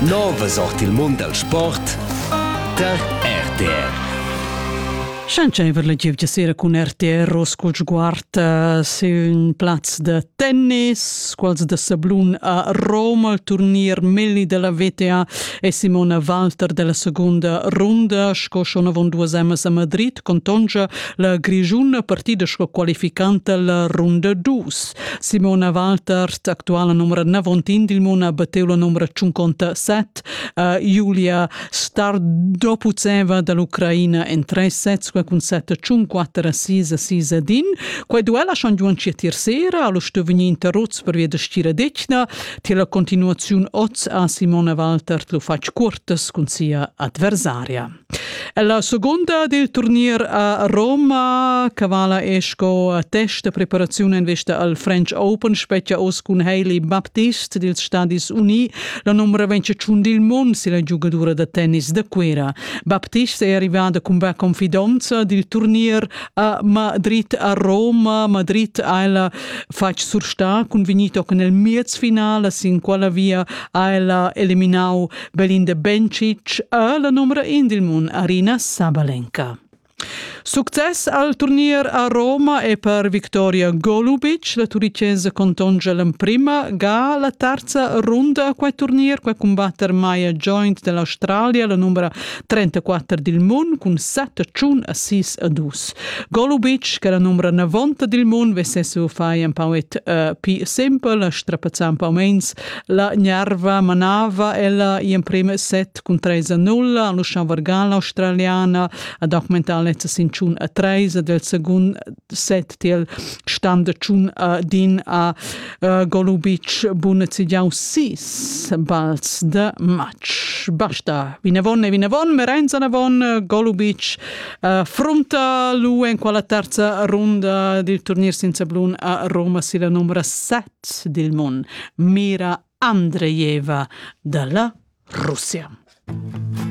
Novas ord il mund dal sport tar RTR. Schentscheiver la gievgia sera cun RTR Roscol sguard sin un plaz da tennis, quals da sablun a Roma, il turnier Melli della VTA e Simona Walter della seconda ronda, sco schon avon duas emas a Madrid, contongia la Grigiun partida sco qualificanta la runda dus. Simona Waltert, actuala numra navontin dil mun, ha batteu la numra tschunconta set. Uh, Julia star dopo zeva dall'Ucraina en tre sets cun sette tschun quattro sis a sis ad in. Quei duella schon giuan tier sera, allo sto vegnir interrots per via da stira degna. Ti la continuaziun oz a Simona Waltert lu fatg curtas cun sia adversaria. E la segunda dil turnier a Roma cavala è sco test da preparaziun en vista al French Open spetga oz cun Hailey Baptist dils Stadis Uni la numera venciaciun dil mond si la giugadura da tennis da Cuera. Baptist è arrivada cun va confidonza dil turnier a Madrid a Roma. Madrid ha ella fatg sursta cun vegnir nel miez finala sin quella via ha ella eliminau Belin de Bencic è la numero in dil mun Arina Sabalenka. Success al turnier a Roma e per Victoria Golubic, la turicesa contongia l'emprima ga la terza runda a quei turnier, quei combatter mai joint dell'Australia, la numero 34 dil mun cun 7 ciun a 6 a 2. Golubic, che la numero 90 dil mun, vesse su fai un pauet uh, pi simple, strapazzà un po mens La gnerva manava ella in prima set cun 3 a 0 a l'Uschan Vargan australiana ad augmentar lezza sin tschun a 3 ad il secund set til stand da tschun din a uh, Golubic Bunecidiau 6 bals de match. Basta, vinavon e vinavon, Merenza Navon, Golubic uh, frunta l'UE in quella terza runda del turnier senza blun a Roma si la numero 7 dil mund, mira Andrejeva dalla Russia.